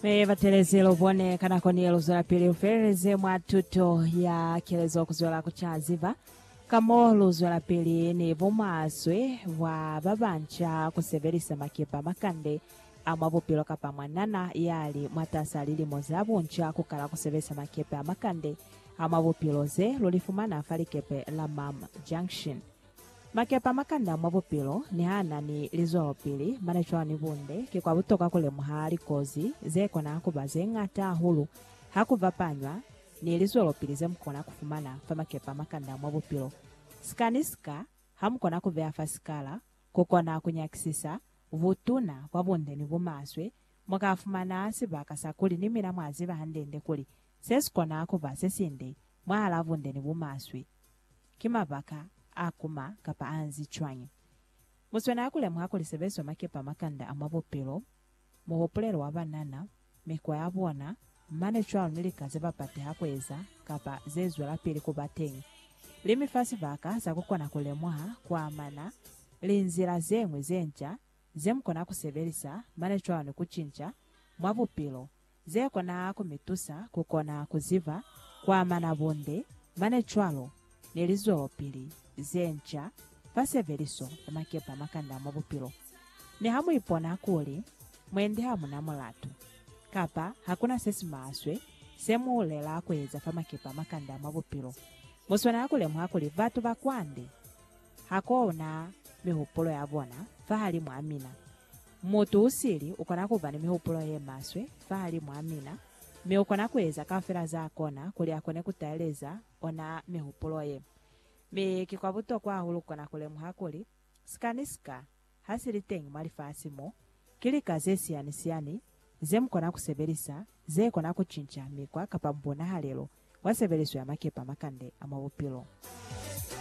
Mi batelezi lu bone ka nako ni lu zwelapili lu feleleze mwa tuto ya kelezo ku zwela ku ca ziba ka mo lu zwelapili ni bumaswe bwa ba banca ku sebelisa makepa makande a mwa bupilo kapa mwanana ya li mwatas'a lilimo za bunca ku kala ku sebelisa makepe a makande a mwa bupilo ze lu li fumana fa likepe la Ma'am Junction. Makepa makanda mwa bupilo ni ha na ni lizwelopili mane cwalo ni bunde, ki kwa butokwa ku lemuha likozi ze kona ku ba ze ñata hahulu ha ku bapanywa ni lizwelopili ze mu kona ku fumana fa makepa makanda mwa bupilo. Sika ni sika ha mu kona ku beya fa sikala, ku kona ku nyakisisa butuna bwa bunde ni bumaswe, mu ka fumana sibaka sa kuli ni mina mwa ziba hande-nde kuli se si kona ku ba se sinde mwahalaa bunde ni bumaswe. Ki mabaka a kuma kapa a nzi cwañi? Mu swanela ku lemuha kuli sebezo makepa makanda a mwa bupilo, muhupulelo wa banana, mikwa ya bona, mane cwalo ni lika ze ba pateha ku eza kapa ze zwelapili ku ba teñi, li mi fa sibaka sa ku kona ku lemuha ku amana li nzila ze ñwi ze nca ze mu kona ku sebelisa mane cwalo ni ku cinca mwa bupilo Ze kona ku mi tusa ku kona ku ziba ku amana bunde mane cwalo ni lizwelopili ze nca fa sebeliso ya makepa makanda mwa bupilo. Mi ha mu ipona kuli mwendi ha mu na mulatu, kapa ha ku na se si maswe se mu lela ku eza fa makepa makanda mwa bupilo, mu swanela ku lemuha kuli batu ba kwande ha ko na mihupulo ya bona fahalimwaa mina. Mutu u sili u kona ku ba ni mihupulo ye maswe fahalimw'a mina, mi u kona ku eza kaufela za kona kuli a kone ku taeleza ona mihupulo ye. Mi ki kwa butokwa hahulu ku kona ku lemuha kuli, sika ni sika ha si li teñi mwa lifasi mo, ki lika ze siani-siani ze mu kona ku sebelisa ze kona ku cinca mikwa kapa mbunahalelo bwa sebeliso ya makepe a makande a mwa bupilo.